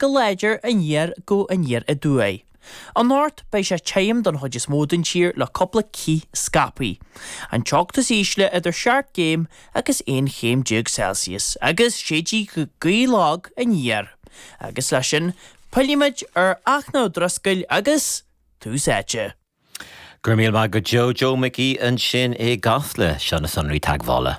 go láidir aniar go aniar aduaidh. Anocht beidh sé tirim don chuid is mó den tír le cúpla cith scaipthe. An teocht is ísle idir seacht gcéim agus aon chéim déag Celsius agus séidfidh gaoth lag aniar agus leis sin pillfimid ar Fhachtna Ó Drisceoil agus Tús Áite. Go raibh míle maith agat Joe Mhicí ansin i gCasla. Seo na sonraí teagmhála.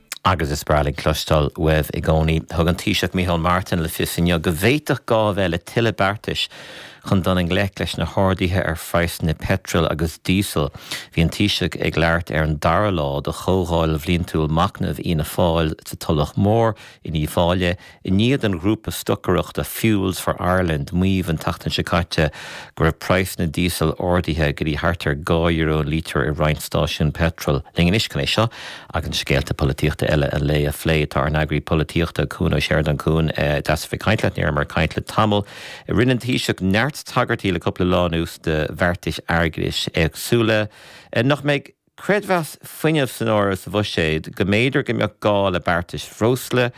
Agus is breá linn cloisteáil uaibh i gcónaí. Thug an Taoiseach Micheál Martin le fios inniu go bhféadfadh gá a bheith le tuilleadh beartais chun dul i ngleic leis na harduithe ar phraghsanna peitril agus díosail. Bhí an Taoiseach ag labhairt ar an dara lá de chomhdháil bhliantúil machnaimh Fhianna Fáil sa Tulach Mhór in Uíbh Fhailí, I ndiaidh don ghrúpa stocaireachta Fuels for Ireland maíomh an tseachtain seo caite go raibh praghsanna díosail ardaithe go dtí thart ar dhá euro an lítear i roinnt stáisiún peitril linn anois chun é seo agus scéalta polaitíochta eile an lae a phlé. Tá ár n-eagraí polaitíochta, Cuan Ó Seireadáin, Cuan, deas a bheith ag caint leat. Ní raibh mé ag caint leat le tamall. Rinne an Taoiseach neart tagairtí le cúpla lá anuas do bheartais airgeadais éagsúla nach mbeidh. Creidmheas Fuinnimh san áireamh sa bhuiséad, go mb'fhéidir go mbeadh gá le beartais bhreosla,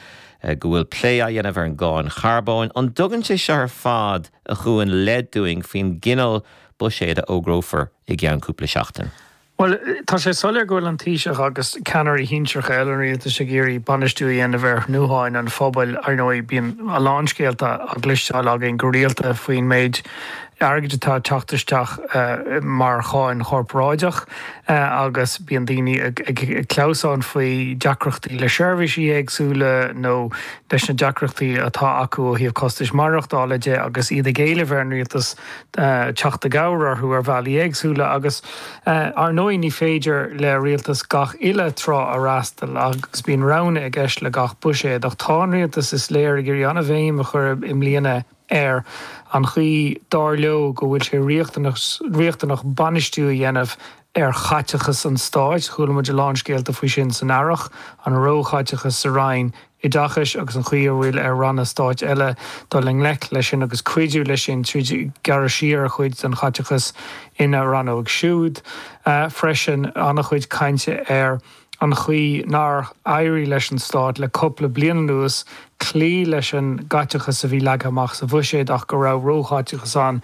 go bhfuil plé á dhéanamh ar an gcáin charbóin. An dtugann sé seo ar fad a Chuain leid dúinn faoin gcineál buiséid a fhógrófar i gceann cúpla seachtain? Bhuel, tá sé soiléir go bhfuil an Taoiseach agus ceannairí shinsearacha eile an rialtais ag iarraidh bainistiú a dhéanamh ar thnútháin an phobail. Ar ndóigh, bíonn a lán scéalta á gcloisteáil againn go rialta faoin méid, airgid atá ag teacht isteach mar cháin chorparáideach agus bíonn daoine ag clamhsán faoi deacrachtaí le seirbhísí éagsúla nó leis na deacrachtaí atá acu ó thaobh costais mhaireachtála de agus iad ag éileamh ar an rialtas teacht i gcabhair orthu ar bhealaí éagsúla agus ar ndóigh ní féidir le rialtas gach uile trá a fhreastal agus bíonn roghanna i gceist le gach buiséad ach tá an rialtas is léir ag iarraidh an-bhéim a chur i mbliana ar ar an chaoi, dar leo, go bhfuil sé riachtanach bainistiú a dhéanamh ar chaiteachas an Stáit. Chuala muid a lán scéalta faoi sin san Earrach, an róchaiteachas sa Roinn Oideachais agus an chaoi a bhfuil ar Ranna Stáit eile dul i ngleic leis sin agus cuidiú leis sin tríd gearradh siar ar chuid den chaiteachas ina Rannóg siúd freisin. An-chuid cainte ar. an chaoi nár éirigh leis an Stát le cupla bliain anuas cloí leis an gcaiteachas a bhí leagtha amach sa Bhuiséad ach go raibh róchaiteachas ann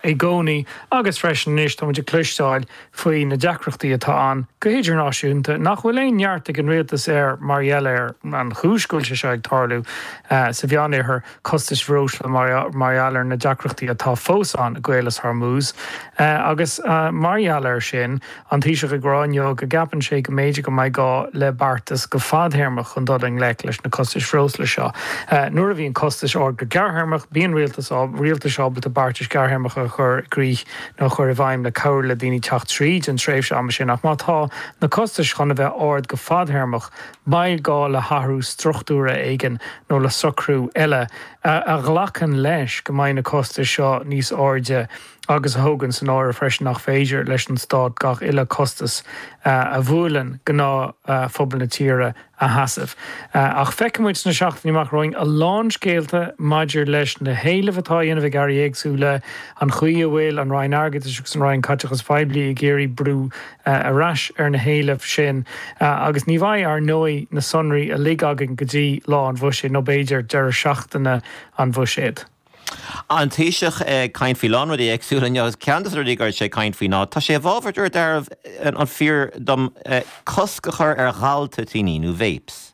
i gcónaí agus freisin anois táimid ag cloisteáil faoi na deacrachtaí atá ann go hidirnáisiúnta nach bhfuil aon neart ag an Rialtas air mar gheall ar an chúis go bhfuil sé seo ag tarlú sa Mheánoirthear. costais bhreosla mar gheall ar na deacrachtaí atá fós ann i gCaolas Hormuz agus, mar gheall air sin, an Taoiseach ag rá inniu go gceapann sé go mb'fhéidir go mbeidh gá le beartas go fadthéarmach chun dul i ngleic leis na costais bhreosla seo. Nuair a bhíonn costais ard go gearrthéarmach, bíonn rialtais ábalta beartais ghearrthéarmacha a chur i gcrích nó a chur i bhfeidhm le cabhrú le daoine teacht tríd an tréimhse ama sin ach má tá na costais chun a bheith ard go fadthéarmach, Beidh gá le hathrú struchtúrtha éigin nó le socrú eile a ghlacann leis go mbeidh na costais seo níos airde agus a thógann san áireamh freisin nach féidir leis an Stát gach uile costas a bhuaileann gnáthphobal na tíre a sheasamh. Ach feicfidh muid sna seachtainí amach romhainn a lán scéalta maidir leis na héilimh atá á dhéanamh ag Airí éagsúla, an chaoi a bhfuil an Roinn Airgeadais agus an Roinn Caiteachais Phoiblí ag iarraidh brú a ar ais ar na héilimh sin agus ní bheidh, ar ndóigh, na sonraí uilig againn go dtí lá an Bhuiséid nó, b'fhéidir, deireadh seachtaine an Bhuiséid. An Taoiseach ag caint faoi a lán rudaí éagsúla inniu agus ceann de na rudaí a raibh sé ag caint faoi ná, tá sé i bhfabhar, murab fíor dom, cosc a chur ar ghaltoitíní nó vapes.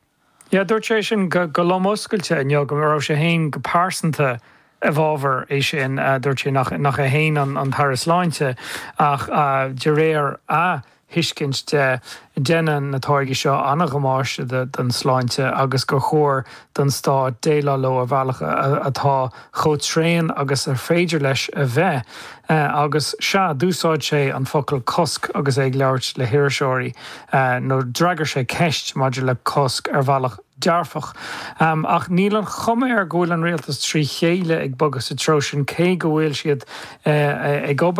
Yeah, dúirt sé sin go lom oscailte inniu, go raibh sé féin go pearsanta i bhfabhar é sin. Dúirt sé nach é féin an tAire Sláinte ach de réir a thuiscint de, déanann na táirgí seo an-dhamáiste don tsláinte agus gur chóir don Stát déileáil leo ar bhealach atá chomh tréan agus is féidir leis a bheith, agus, sea, d'úsáid sé an focal 'cosc' agus é ag labhairt le hiriseoirí, nó d'fhreagair sé ceist maidir le cosc ar bhealach dearfach. Ach níl an chuma air go bhfuil an rialtas trí chéile ag bogadh sa treo sin, cé go bhfuil siad ag obair,